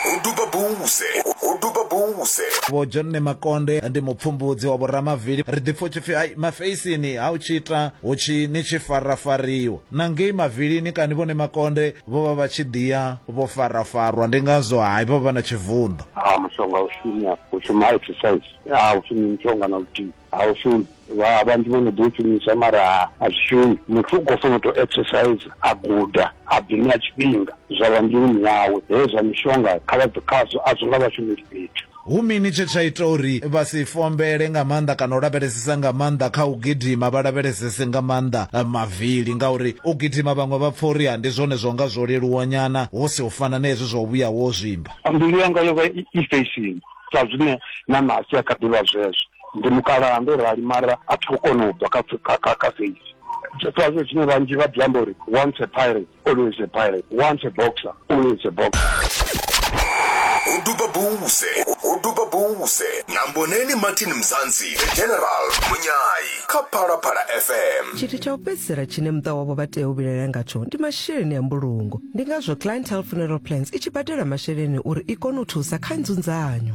ho duba buse ho duba buse vho john makonde ndi mupfumbudzi wa vhoramavili ri ḓipfa u tshi pfi ai mafeisini ha u tshi ita hu tshi ni tshi farafariwa na ngei mavilini kani vhone makonde vho vha vha tshi ḓiya vho farafarwa ndi ngazwo hai vha vha na tshivunḓo ha mushonga u shumi ha u shumi ha exercise ha u shumi mushonga na luthihi ha u shumi Vha vhanzhi vho no ḓi u shumisa mara a zwi shumi. Muthu u khou fanela u tou exercise, a guda, a ḓi ṋea tshifhinga zwa vha mbiluni yawe. Hezwi zwa mishonga kha vha bve khazwo, a zwo nga vha shumeli fhethu. Hu mini tshe tsha ita uri vha si fombele nga maanḓa kana u lavhelesesa nga maanḓa kha u gidima, vha lavhelesese nga maanḓa mavili? Ngauri u gidima vhaṅwe vha pfa uri ndi zwone zwa nga zwo leluwanyana hu si u fana na hezwi zwa u vhuya wo zwimba. Mbilu yanga yo vha i fesheni, sa zwine na Nasi a kha ḓi vha zwezwo. ndi mukalaha ndo rali mara a thi khou kona u bva kha feisi zwiṱwazo zwine vhanzhi vha ḓi amba uri once a pirate always a pirate once a boxer always a boxer u duba buse u duba buse na mboneni martin mzansi the general munyayi kha phalaphala fm tshithu tsha u fhedzisela tshine muṱa wavho vha tea u vhilaela ngatsho ndi masheleni a mbulungo ndi ngazwo clientele funeral plans i tshi badela masheleni uri i kone u thusa kha nzunzanyo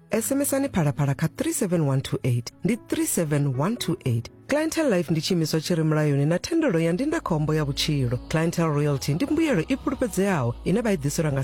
sms-ani phalaphala kha 37128 ndi 37128 clientel life ndi tshiimiswa tshi re mulayoni na thendelo ya ndindakhombo ya vhutshilo clientel royalty ndi mbuyelo i fhulufhedzeaho ine vha i ḓiselwa nga